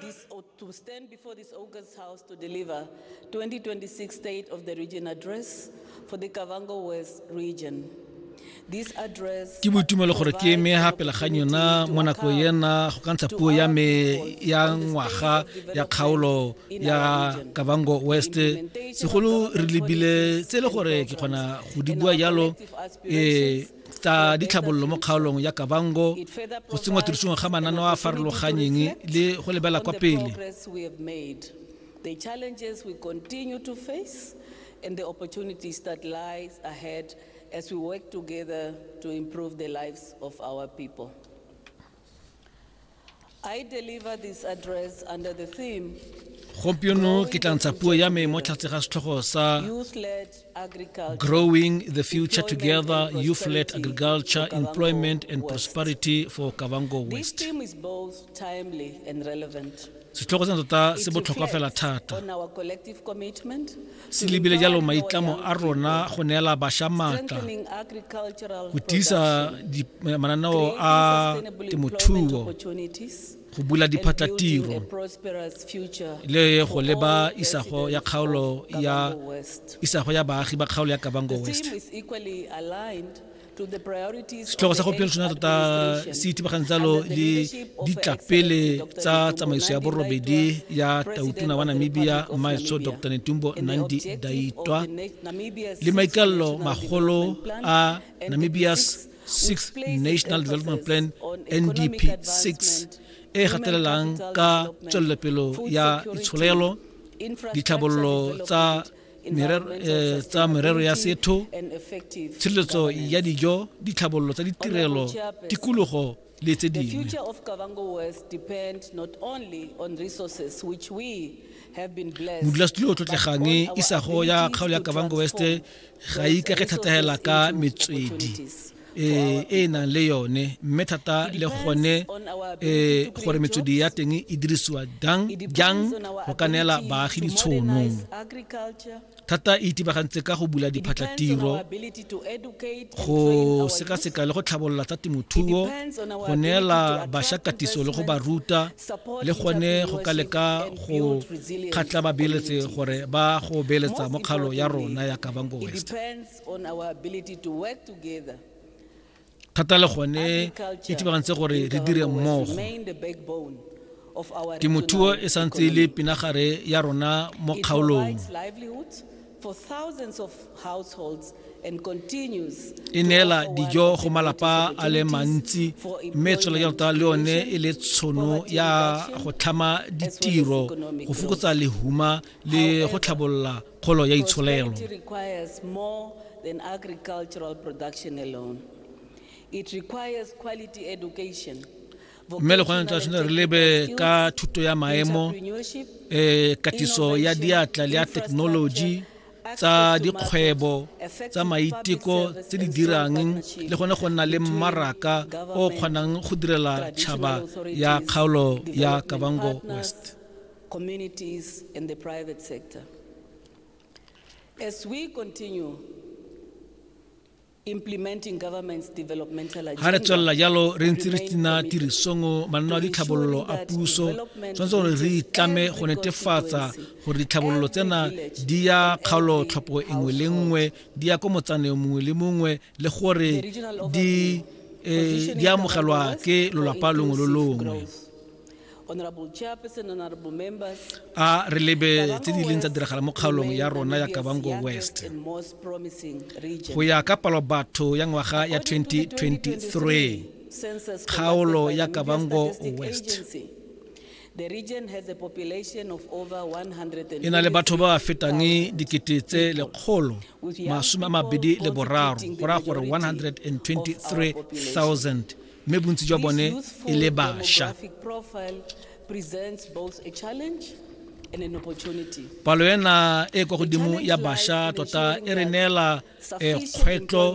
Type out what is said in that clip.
this or to stand before this August House to deliver 2026 State of the Region Address for the Kavango West Region. ke boitumelo gore ke eme ga pele ga yona mo nako ena go ka ntsha puo ya me ya ngwaga ya kgaolo ya kabango west segolo re lebile tse e le gore ke kgona go di bua jalo um tsa ditlhabololo mo kgaolong ya kabango go tsenngwa tirisong ga mananeo a farologanyeng le go lebela kwa pele the challenges we continue to face and the opportunities that lies ahead as we work together to improve the lives of our people. I deliver this address under the theme gompieno ke tla ntsha puo ya me mo tlhatse ga setlhogo sa growing the future together youth led agriculture employment and prosperity for kavango west setlhogo sena tota se botlhokwa fela thata se lebile jalo maitlamo a rona go neela bašwa maatla go tiisa eh, mananeo a temothuo go bula diphatlatiro le go leba isago ya kgaolo ya isago ya baagi ba kgaolo ya kabango west setlhogo sa gompieno sona tota se ithibagang jalo le ditlapele tsa tsamaiso ya borobedi ya tautona wa namibia mmaetso dr netumbo nandi daitwa le maikalelo magolo a namibia's sixth national development plan ndp 6 e gatelelang ka tswelelopelo ya itsholelo ditlhabololo tsa eh, tsa merero ya setho tshireletso ya dijo ditlhabololo tsa ditirelo tikologo le tse dingwe modulasetulo o tlotlegang isago ya kgaolo ya kavango west ga e ikage thategela ka metswedi e e nang le yone mme thata le gone e gore metswedi ya teng e dirisiwa jang jang go ka neela baagi ditshono thata e itibagantse ka go bula diphatlatiro go sekaseka le go tlhabolola tsa temothuo go neela bašwa katiso le go ba ruta le gone go ka leka go kgatla babeeletse gore ba go beeletsa mo kgalo ya rona ya kabango west thata le gone e tibagantse gore re dire mmogo temothuo e santse e le pinagare ya rona mo kgaolong e neela dijo go malapa a le mantsi mme tswela ya tota le yone e le tshono ya go tlhama ditiro go fokotsa lehuma le go tlhabolola kgolo ya itsholelo Prosperity requires more than agricultural production alone. It requires quality education. mme le gone tla tshwanetse re lebe ka thuto ya maemo entrepreneurship, eh katiso ya diatla le ya thekenoloji tsa dikgwebo tsa maiteko tse di dirang le gone go nna le mmaraka o o kgonang go direla tšhaba ya kgaolo ya kavango west communities and the private sector. As we continue implementing government's developmental agenda, ga re tswelela jalo re ntse re tsena tirisong manno a ditlhabololo a puso tshwanetse gore re itlame go netefatsa gore ditlhabololo tsena di ya kgaolo tlhopho engwe le nngwe di ya ko motsaneng mongwe le mongwe le gore di eh, di amogelwa ke lolapa longwe lo longwe a re lebe tse di leng tsa diragala mo kgaolong ya rona ya kabango west go ya ka palo batho ya ngwaga ya 2023 kgaolo ya kabango west e na le batho ba ba fetang dikete tse lekgolo masome a mabedi le boraro go raya gore 123000 mme bontsi jwa bone e le basha palo ena e kwa godimo ya basha tota e re neela eh, kgwetlho